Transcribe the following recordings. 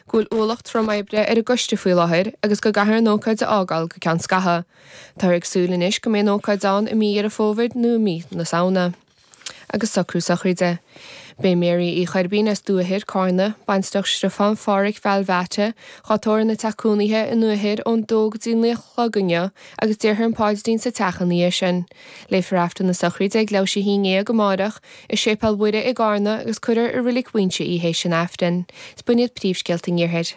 go bhfuil ualach trom oibre ar an gcoiste faoi láthair agus go gcaithfear an ócáid a fhágáil go ceann scaithe. Táthar ag súil anois go mbeidh an ócáid ann i mí Dheireadh Fómhair nó i mí na Samhna. Agus socrú sochraide. Beidh Mary Uí Choirbín as Dumha Thoir, Cárna, baintreach Stiofán Pháraic Bheailbheáite, dhá tórramh ina teach cónaithe i nDumha Thoir ón dó go dtí naoi a chlog inniu agus déarfar an paidrín sa teach ina dhiaidh sin. Léifear aifreann na sochraide ag leathuair th'éis a haon déag amáireach, i Séipéal Mhuire i gCarna agus cuirfear i Roilig Mhaínse í th'éis an aifrinn. Is b'in iad príomhscéalta an Iarthair.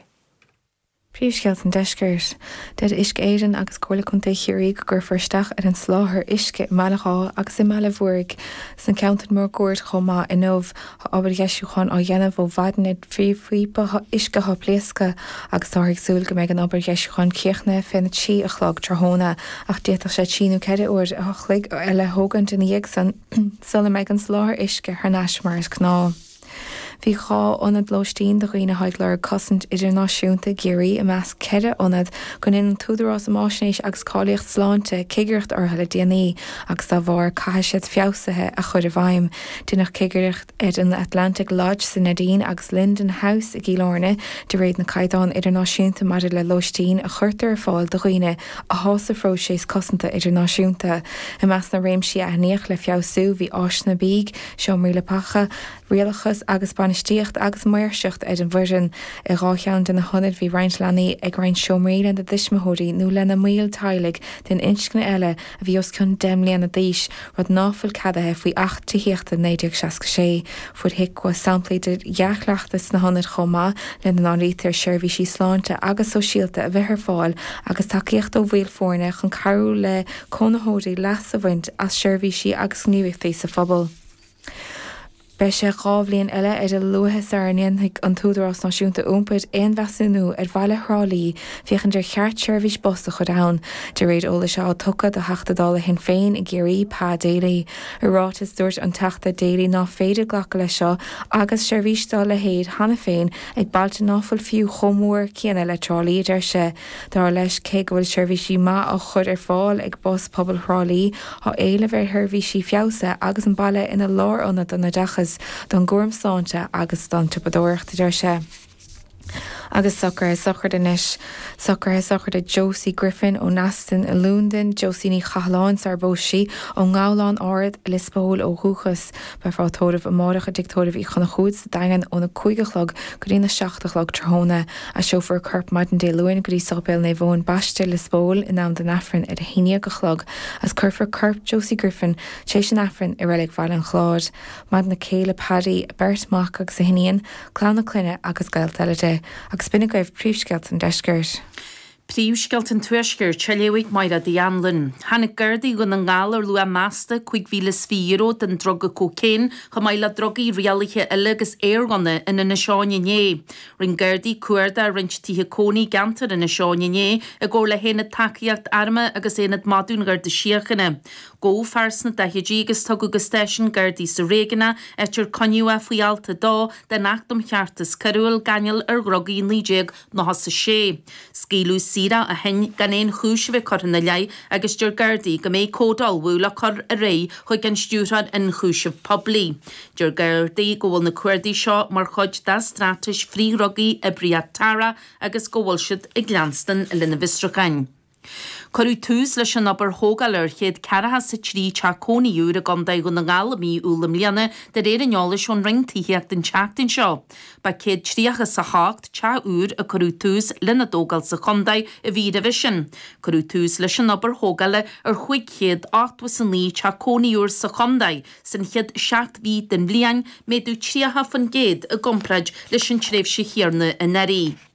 Príomhscéalta an Deiscirt. Deir Uisce Éireann agus Comhairle Contae Chiarraí go gcuirfear isteach ar an soláthar uisce i mBaile Ghá agus i mBaile Mhúraigh. Is na ceantair máguaird chomh maith inniu, tá obair dheisiúcháin á dhéanamh ó mhaidin ar phríomhphíopa uisce atá pléasctha agus táthar ag súil go mbeidh an obair dheisiúcháin críochnaithe fé na trí a chlog tráthnóna ach d'fhéadfadh sé trí nó ceithre uair a chloig eile a thógaint ina dhiaidh san sula mbeidh an soláthar uisce thar n-ais mar is gnáth. Bhí dhá ionad lóistín do dhaoine a tá ag lorg cosaint idirnáisiúnta i gCiarraí i measc ceithre ionad gur dhein an tÚdarás um Fhaisnéis agus Cáilíocht Sláinte cigireacht orthu le déanaí agus dá bharr caithfidh siad feabhsuithe a chur i bhfeidhm. Deineadh cigireacht ar an Atlantic Lodge sa Neidín agus Linden House i gCill Airne de réir na caighdeán idirnáisiúnta maidir le lóistín a chuirtear ar fáil do dhaoine atá sa phróiseas cosanta idirnáisiúnta. I measc na réimsí a aithníodh le feabhsú bhí áiseanna bídh, Seomraí Leapacha, Rialachas agus Bainistíocht agus Maoirseacht ar an bhfoireann. I dhá cheann de na hionaid bhí roinnt leanaí ag roinnt seomraí lena dtuismitheoirí nó lena mbaill teaghlaigh den inscne eile a bhí os cionn deich mbliana d'aois, rud ná fuil ceadaithe faoi Acht Tithíochta 1966. Fuair HIQA samplaí de dhea-chleachtas sna hionaid chomh maith, lena n-áirítear seirbhísí sláinte agus sóisialta a bheith ar fáil agus tacaíocht ó bhaill foirne chun cabhrú le cónaitheoirí leas a bhaint as seirbhísí agus gníomhaíochtaí sa phobal. Beidh sé dhá bhliain eile ar a luaithe sara ndéanfaidh an tÚdarás Náisiúnta Iompair aon mheasúnú ar bhaile Thrá Lí féachaint ar cheart seirbhís bus a chur ann, de réir eolais atá tugtha do Theachta Dála Shinn Féin i gCiarraí, Pa Daly. I ráiteas, dúirt an Teachta Daly ná féidir glacadh leis seo agus seirbhís dá leithéid cheana féin ag bailte ná fuil fiú chomh mór céanna le Trá Lí, a deir sé. Dar leis, cé go bhfuil seirbhísí maith á chur ar fáil ag Bus Pobail Thrá Lí, tá éileamh ar sheirbhísí feabhsaithe agus an baile ina lárionad don oideachas, don gcúram sláinte agus don tsiopadóireacht, a deir sé. Agus socruithe sochraide anois. Socruithe sochraide Josie Griffin ó Neasden i Londain, Josie Ní Chathalláin, Sár Boise, ón nGabhlán Ard, Lios Póil ó dhúchas. Beifear á tórramh amárach i dTigh Tórraimh Uí Chonchúir sa Daingean ón 5 a chlog go dtí an 7 a chlog tráthnóna. Aistreofar a corp maidin Dé Luain go dtí Sáipéal Naomh Eoin Baiste, Lios Póil, in am don Aifreann ar a haon dhéag a chlog agus cuirfear corp Josie Griffin tar éis an Aifrinn i reilig Bhaile an Chláir. Maireann a céile Paddy, a beirt mhac agus a hiníon, clann a clainne agus gaolta eile di. Agus b'in agaibh príomhscéalta an deiscirt. Príomhscéalta an Tuaiscirt, á léamh ag Máire The Anlann. Tháinig Gardaí Dhún na nGall ar luach measta €25,000 den druga cocaine chomh maith le drugaí rialaithe eile agus aerghunna in Inis Eoghain inné. Rinne Gardaí cuardach i roinnt tithe cónaí i gceantar Inis Eoghain inné i gcomhar le hAonad Tacaíochta Armtha agus Aonad Madadh an Gharda Síochána. Gabhadh fear sna daichidí agus tugadh go stáisiún Gardaí sa réigiún, áit ar coinníodh é faoi Alt 2 den Acht um Cheartas Coiriúil, Gáinneáil ar Dhrugaí, naoi déag. Nócha is a sé. Scaoileadh saor é ó shin gan aon chúis a bheith curtha ina leith agus deir Gardaí go mbeidh comhad á ullmhú le cur ar aghaidh chuig an Stiúrthóir Ionchúiseamh Poiblí. Deir Gardaí go bhfuil na cuardaigh seo mar chuid dá straitéis frithdhrugaí Oibríocht Tara agus go bhfuil siad ag leanstan lena bhfiosrúcháin. Cuireadh tús leis an obair thógála ar chéad ceathracha is a trí teach cónaí úr i gContae Dhún na nGall i mí Iúil i mbliana, de réir an eolais ón Roinn Tithíochta an tseachtain seo. Ba 138 teach úr a cuireadh tús lena dtógáil sa chontae an mhí roimhe sin. Cuireadh tús leis an obair thógála ar chúig chéad ochtó is a naoi teach cónaí úr sa chontae san chéad seacht mhí den bhliain, méadú tríocha faoin gcéad i gcomparáid leis an tréimhse chéarna anuraidh.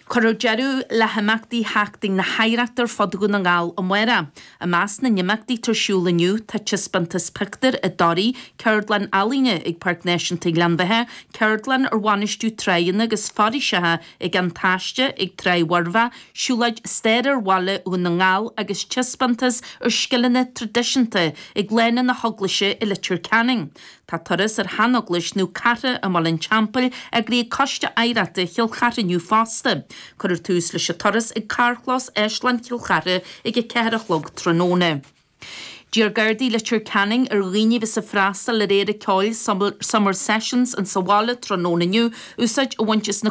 Cuirfear deireadh le himeachtaí Sheachtain na hOidhreachta ar fud Dhún na nGall amárach. I measc na n-imeachtaí atá ar siúl inniu tá taispeántas pictiúr i dToraigh, ceardlann ealaíne ag Páirc Náisiúnta Ghleann Bheatha, ceardlann ar bhainistiú tráigheanna agus foraoiseacha ag An Taisce ag Tráigh Mhurbhaigh, siúlóid staire ar bhaile Dhún na nGall agus taispeántas ar scileanna traidisiúnta ag Lána na hEaglaise i Leitir Ceanainn. Tá turas ar sheaneaglais Naomh Cartha i mBaile an Teampaill eagraithe ag Coiste Oidhreachta Chill Chartha inniu fosta. Cuirfear tús leis an turas ag carrchlós Áislann Chill Chartha ag a ceathair a chlog tráthnóna. D'iarr Gardaí Leitir Ceanainn ar dhaoine a bheas ag freastal ar Fhéile Ceoil Summer Sessions in sa bhaile tráthnóna inniu úsáid a bhaint as na